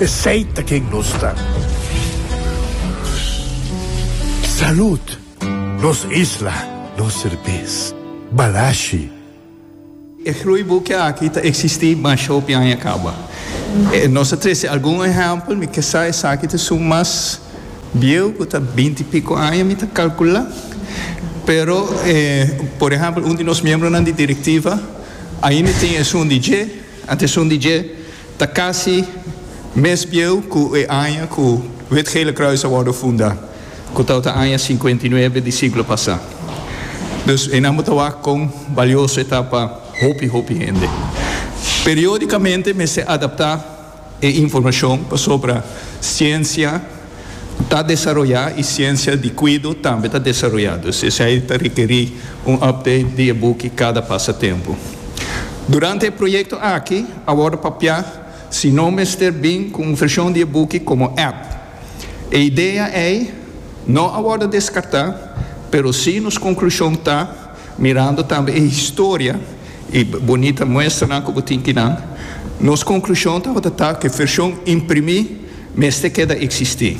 Esey ta ken nos ta. Salud! Nos isla, nos serbes. Balashi. E groeiboekje aki ta eksistí mas hopi aña kaba. Nos a trese algun ehèmpel, mi ke sa esaki ta su mas bieu ku ta binti i piko aña, mi ta kalkulá. Pero, por ehèmpel, un di nos miembronan di direktiva ainda tin esun di dje. Atencion di dje ta casi mes bieu cu e aña cu Wit Gele Kruis a wordo funda, cu ta ota aña cincuenta y nuebe di siglo pasa. Dus einan bo ta wak con balioso e ta pa hopi hopi hende. Periodicamente mester adapta. E informashon pasobra siensia ta desaroyá i siensia di kuido tambe ta desaroyá, dus esei ta rekerí un update di e buki kada pasa tempu. Durante e proyekto aki a wòrdu papiá si no mester bin ku un vershon di e buki komo app. E idea ei no a wòrdu deskartá, pero sí nos konklushon ta Mirando tambe e historia y bonita muestranan cu bo tin di nan, nos conclusion tabata ta cu e version imprimi mester keda existi.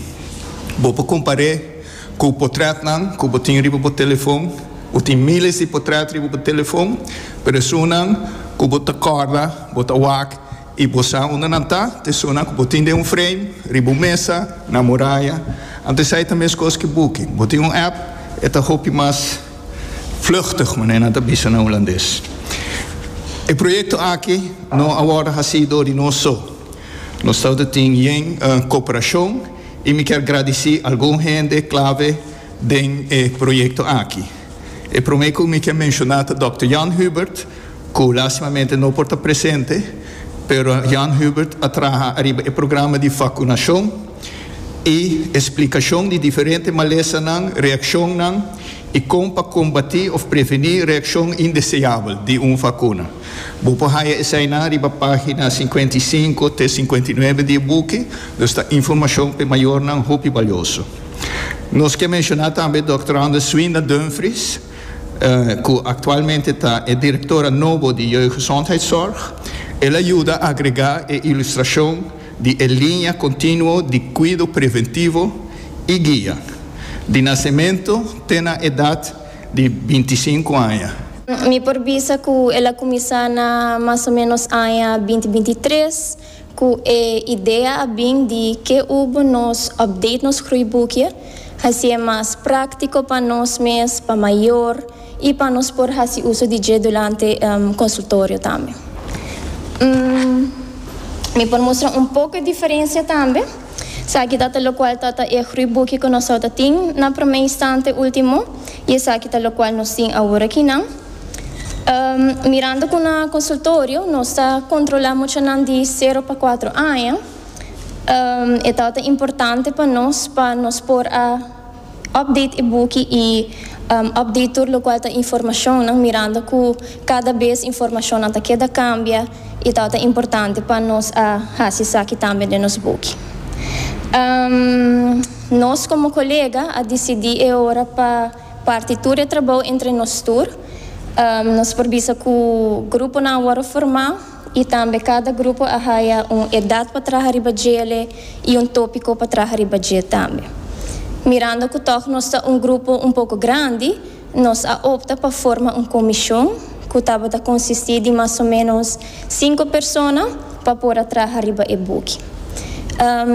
Bo por compare cu potretnan cu bo tin riba bo telefon. Bo tin miles di potret riba bo telefon, pero esunnan cu bo ta corda, bo ta wak. I bo sa unda nan ta, tesonan ku bo tin den un freim, riba un mesa, na moraya. Anto esei ta meskos ku buki. Bo tin un app, e ta hopi mas vluchtig, manera nan ta bisa na hulandes. E proyekto aki no a wòrdu hasí dor di nos so. Nos tabata tin yen koperashon i mi kier gradisí algun hende klave den e proyekto aki. E promé ku mi kier menshoná ta dòkter Jan Hubert, cu lastimamente no por ta presente, pero Jan Hubert a traha ariba e programa di vacunacion y e splicacion di diferente malesanan, reaccionnan y con pa combati of preveni reaccion indeseabel di un vacuna. Bo por haya esainan riba pagina cincuenta y cinco te cincuenta y nuebe di e buki, dus ta informacion p'e mayornan hopi balioso. Nos ke menciona tambe Dòkter Anders Swinda Dumfries, cu actualmente ta e directora nobo di Jeugdgezondheidszorg, el a yuda agrega e ilustracion di e linea continuo di cuido preventivo y guia, di nacemento te na edad di binti sinku aña. Mi por bisa cu el a cuminsa na mas o menos aña binti binti tres. Ku e idea a bin di ke ubo nos update nos gruibukie, hasi e mas práktiko pa nos mes, pa mayor i pa nos por hasi uso di dje durante konsultorio tambe. Mi por mustra un poko e diferensia tambe. Esaki ta ta lokual ta ta e gruibukie ku nos tabata tin na promé instante último, i esaki ta lokual nos tin aworakinan. Mirando cu na consultorio nos ta controla muchanan di cero pa cuatro aña, e ta ta importante pa nos pa nos por a update e buki y update tur locual ta informacionnan mirando cu cada bes informacionnan ta keda cambia y ta ta importante pa nos a haci esaki tambe den nos buki. Nos como colega a dicidi e ora pa. Parti tur e trabou entre nos tur. Nos por bisa ku gruponan a wòrdu formá i tambe kada grupo a haya un edat pa traha riba djele i un tópiko pa traha riba dje tambe. Mirando ku tòg nos ta un grupo un poko grandi, nos a opta pa forma un komishon ku tabata konsistí di mas o ménos Sinku persona pa por a traha riba e buki.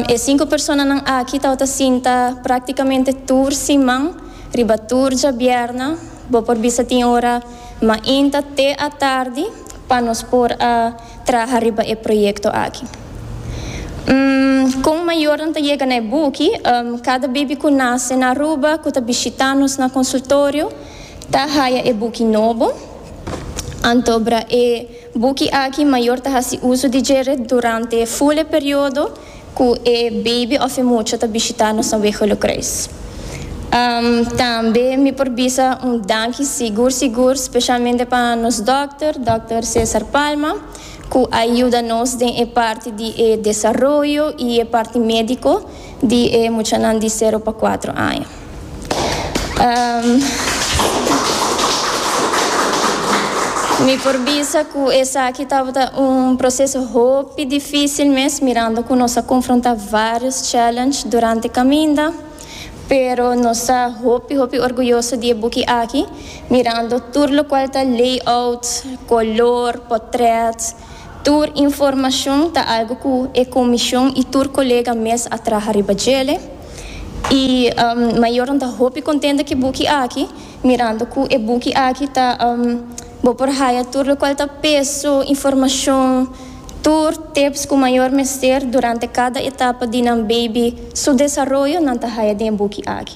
E sinku personanan aki tabata sinta práktikamente tur siman, riba tur djabièrna, bo por bisa tin ora mainta te atardi pa nos por a traha riba e proyekto aki. Kon mayornan ta yega na e buki, Kada bibi ku nase na Aruba ku ta bishita nos na konsultorio ta haya e buki nobo. Anto bra e buki aki mayor ta hasi uso di djere durante e ful e periodo cu e baby of e mucha ta bishita nos na Wegelo Kruis. Umm tambe mi por bisa un danki sigur sigur specialmente pa nos dokter, Dokter Cesar Palma, cu a yuda nos den e parti di e desaroyo y e parti medico di e muchanan di sero pa cuatro aña. Mi por bisa cu esaki tabata un proceso hopi dificil mes, mirando cu nos a confronta varios challenge durante caminda, pero nos ta hopi hopi orguyoso di e buki aki, mirando tur locual ta layout, color, potret. Tur informashon ta algu ku e komishon i tur kolega mes a traha riba djele. I mayornan ta hopi kontenta ku e buki aki, mirando ku e buki aki ta Bo por haya tur lokual ta peso, informashon, tur tips ku mayor mester durante kada etapa di nan beibi su desaroyo nan ta haya den e buki aki.